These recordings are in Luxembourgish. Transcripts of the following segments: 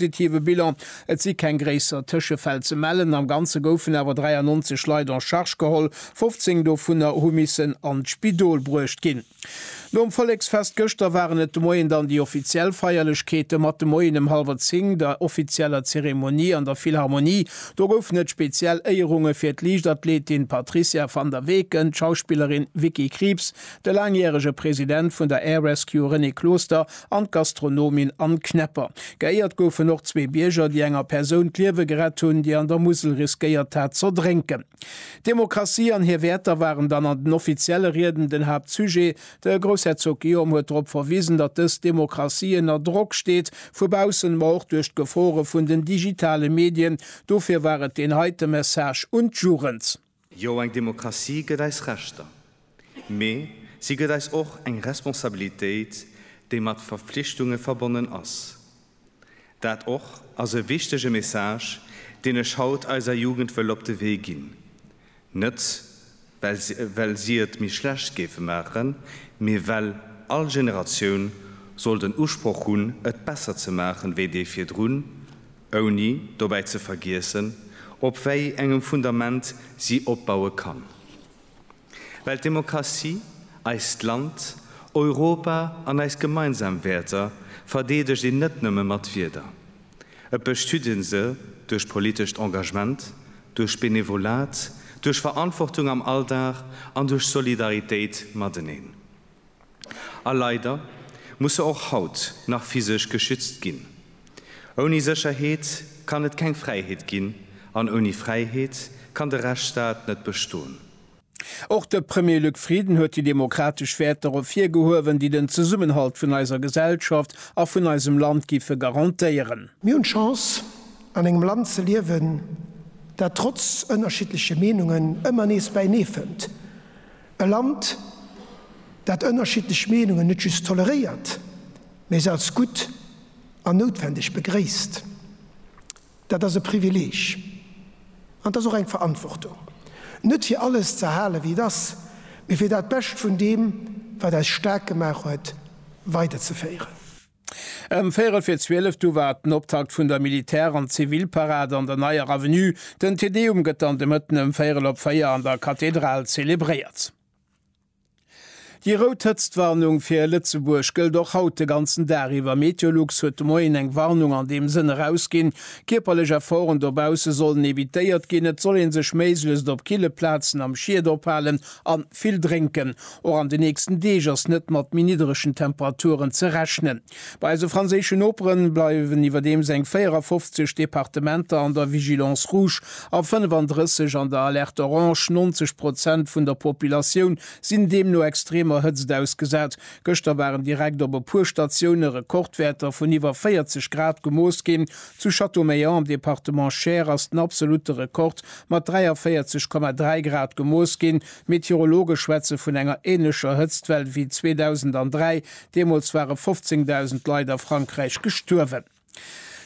positiven Bilan. Et si keng gréisser Tëschefäll ze mellen. Am Ganze goufen awer 93 Leit en Charge geholl, 15 dovunner hu missen an d'Spidol bruecht ginn. Nom Volleksfest gëschter waren et de Moien dann déi offiziell Feierlechkeeten, mat de Moien em hallwer 10 der offizieller Zeremonie an der Philharmonie. Do goufen et speziell Éierunge fir d'Liichtathletin Patricia Van der Weken, d'Schauspillerin Vicky Krieps, De laangjärege President vun der Air Rescue René Closter an d'Gastronomin Anne Knepper. Geéiert goufen och zwee Bierger, déi enger Persoun d'Liewe gerett hunn, déi an der Musel riskéiert hat z'erdrénken. D'Demokratie an hir Wäerter waren dann an den offizielle Rieden den Haaptsujet. De Groussherzog Guillaume huet drop verwisen, datt dës Demokratie ënner Drock steet, vu baussen, ma och duerch d'Gefore vun den digitale Medien. Dofir war et deen heite Message un d'Jugend. Jo, eng Demokratie gëtt eis Rechter, mee si gëtt eis och eng Responsabilitéit, déi mat Verpflichtunge verbonnen ass. Dat och ass e wichtege Message, deen ech haut eiser Jugend wëll op de Wee ginn, net well si et méi schlecht géife maachen, mee well all Generatioun soll den Usproch hunn, et besser ze maachen wéi déi virdrun. ouni dobäi ze vergiessen, op wei engem Fundament si opbaue kann. Well d'Demokratie eist Land, Europa an eis gemeinsam Wäerter verdeedegt een net nëmme mat Wieder. Et bestüt ee se duerch politescht Engagement, duerch Benevolat, duerch Verantwortung am Alldag an duerch Solidaritéit mateneen. A leider muss se och haut nach physesch geschützt ginn. Ouni Sécherheet kann et keng Fräiheet ginn an ouni Fräiheet kann de Rechtsstaat net bestoen. Och de Premier Luc Frieden huet déi demokratesch Wäerter ervir gehuewen, déi den Zesummenhalt vun eiser Gesellschaft a vun eisem Land giffe garantéieren. Mir hunn d'Chance, an engem Land ze liewen, dat trotz ënnerschiddleche Meenungen ëmmer nees bäinee fënnt. E Land, dat ënnerschiddlech Meenungen net just toleréiert, mee se als gutt an noutwendeg begréisst, dat ass e Privileeg an et ass och eng Verantwortung, net fir alles ze erhalen, wéi et ass, mee fir dat Bescht vun deem, wat eis staark gemaach huet, weiderzeféieren. Ëm véierel fir zwielef du war den Optakt vun der Militär an Zivilparad an der Neier Avenue. Den Te Deum gëtt dann de Mëtten ëm véierel op véier an der Kathedral zelebréiert. Déi rout Hëtztwarnung fir Lëtzebuerg gëllt och haut de ganzen Dag iwwer. Meteolux huet de Moien eng Warnung an deem Sënn erausginn. Kierperlech Efforten dobausse sollen evitéiert ginn. Et soll ee sech méiglechst op kille Plazen am Schiet ophalen. An vill drénken. Och an de nächsten Deeg ass net mat méi nidderegen Temperaturen ze rechnen. Bei eise franséische Noperen bleiwen iwwerdeems eng 54 Departementer an der Vigilance Rouge a 35 an der Alerte Orange. 90 Prozent vun der Populatioun sinn deemno extremer Hëtzt ausgesat. Gëschter waren direkt op e puer Statioune Rekordwäerter vun iwwer 40 Grad gemooss ginn. Zu Châteaumeillan am Departement Cher ass den absolute Rekord mat 43,3 Grad gemooss ginn. D'Meteorologe schwätze vun enger änlecher Hëtztwell wéi 2003, deemools ware 15.000 Leit a Frankräich gestuerwen.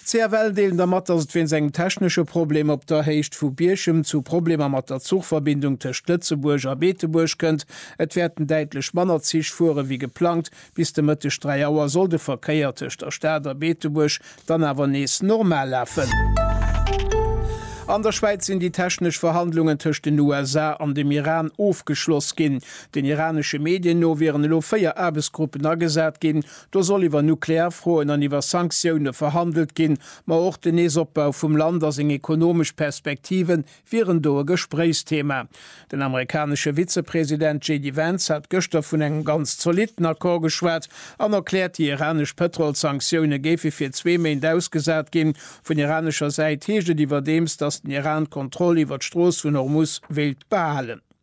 CFL deelen der mat, datt et wéinst engem technesche Problem op der Héicht vu Bierchem zu Problemer mat der Zuchverbindung tëscht Lëtzebuerg a Beetebuerg kënnt. Et wäerten däitlech manner Zich fuere wéi geplangt, Bis de Mëtteg 3 Auer soll de Verkéier tëscht der Stad a Beetebuerg dann awer nees normal lafen. An der Schwäiz sinn déi technesch Verhandlungen tëscht den USA an dem Iran ofgeschloss ginn. Den iranesche Medien no wieren elo 4 Aarbechtsgruppen agesat ginn. Do soll iwwer nuklear Froen an iwwer Sanktioune verhandelt ginn, ma och den Neesopbau vum Land a seng ekonomesch Perspektiven wieren do e Gespréichsthema. Den amerikanesche Vizepresident JD Vance hat gëschter vun engem ganz zolitten Accord geschwat an erkläert, déi iranesch Pëtrolssanktioune géife fir zwee Méint ausgesat ginn. Vun iranescher Säit heescht et iwwerdeems, datt den Iran d'Kontroll iwwer d'Strooss vun Hormuz wéilt behalen.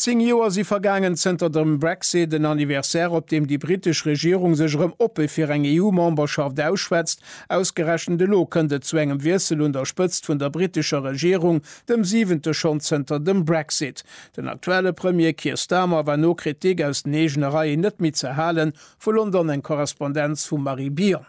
Zéng Joer si vergaangen zënter dem Brexit, en Anniversaire, op deem déi britesch Regierung sech erëm oppe fir eng EU-Memberschaft ausschwätzt. Ausgerechent elo kënnt et zu engem Wiessel un der Spëtzt vun der britescher Regierung, dem siwente schonn zënter dem Brexit. Den aktuelle Premier Keir Starmer war no Kritik aus den eegene Reien net méi ze halen, vu London eng Korrespondenz vum Marie Bion.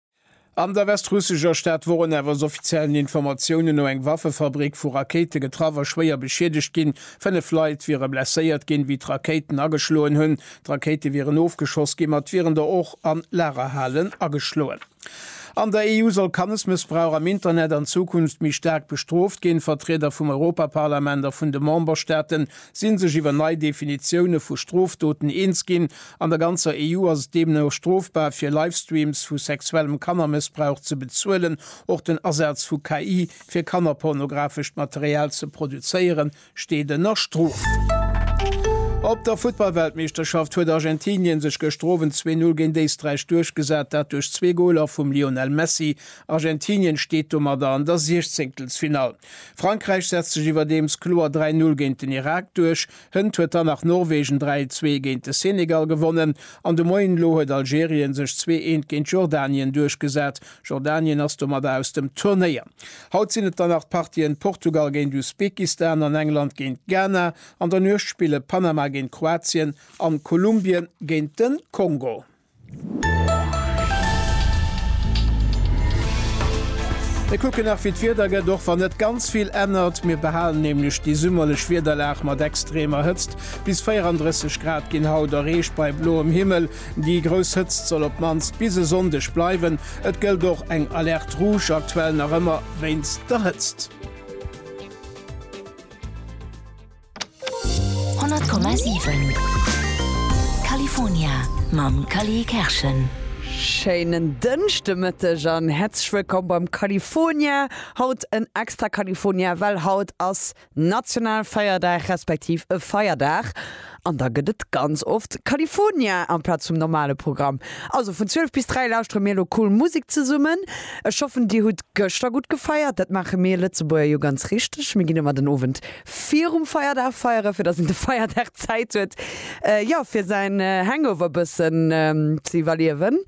An der westrussescher Stad Woronew ass offiziellen Informatiounen no eng Waffefabrik vu Rakéite getraff a schwéier beschiedegt ginn. Fënnef Leit wiere blesséiert ginn, wéi d'Rakéiten ageschloen hunn. D'Rakéite wieren ofgeschoss ginn, ma et wieren der och an Lagerhalen ageschloen. An der EU soll Kannesmëssbrauch am Internet an Zukunft méi staark bestrooft ginn. Vertrieder vum Europaparlament a vun de Memberstaaten si sech iwwer nei Definitioune vu Strofdoten eens ginn. An der ganzer EU ass et deemno strofbar, fir Livestreams vu sexuellem Kannermëssbrauch ze bezuelen. Och den Asaz vu KI, fir kannerpornografescht Material ze produzéieren, steet ënner Strof. Op der Futtballweltmeeschterschaft huet Argentinien sech gëschter Owend zwee Null géint Éisträich duerchgesat, dat duerch zwee Goler vum Lionel Messi. Argentinien steet domadder an der Siechzéngtelsfinall. Frankräich setzt sech iwwerdeems kloer 3 Null géint den Irak duerch. Hënt huet dann nach Norwegen 3 Zwee géint de Senegal gewonnen an de Moien elo huet Algerien sech Zwee Eent géint Jordanien duerchgesat. Jordanien ass domadder aus dem Turnéier. Haut sinn et dann nach d'Partien Portugal géint Usbekistan an England géint Ghana. An der Nuecht spille Panama géint Kroatien an Kolumbien géint de Kongo. Mir kucken nach wéi d'Wieder gëtt, och wann net ganz vill ännert. Mir behalen nämlech déi summerlech Wiederlag mat extremer Hëtzt. Bis 34 Grad ginn haut erreecht bei bloem Himmel. Déi grouss Hëtzt soll op d'mannst bis e Sonndeg bleiwen. Et gëllt och eng Alerte rouge aktuell nach ëmmer wéinst der Hëtzt. 100,7 California mam Cally Kerschen. Schéinen Dënschdemëtteg an häerzlech wëllkomm beim California. Haut en extra California, well haut ass Nationalfeierdag respektiv e Feierdag an da gëtt et ganz oft California amplaz vum normale Programm. Also vun 12 bis 3 lauschtere mir elo cool Musek zesummen. Ech hoffen dir hutt gëschter gutt gefeiert, dat maache mir Lëtzebuerger jo ganz richteg, mir ginn ëmmer den Owend virum Feierdag feieren, fir dass een de Feierdag Zäit huet, jo, fir säin Hangover e bëssen ze iwwerliewen.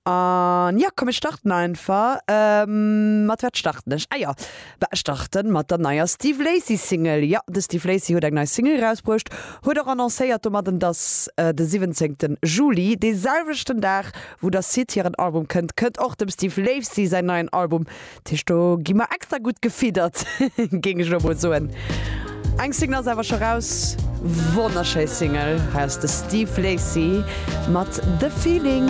An jo, komm ech starten einfach. Mat wat starten ech? Ah jo, bah, ech starten mat der neier Steve Lacy Single. Jo, de Steve Lacy huet eng nei Single erausbruecht, huet och annoncéiert domadden, dass de 17 Juli, dee selwechten Dag wou der Syd hiren Album kënnt, kënnt och dem Steve Lacy säin neien Album Tisch do gi mer extra gut gefiedert géng ech lo mol soen. Eng Single ass awer scho raus, wonnerschéi Single, hei ass de Steve Lacy mat The Feeling.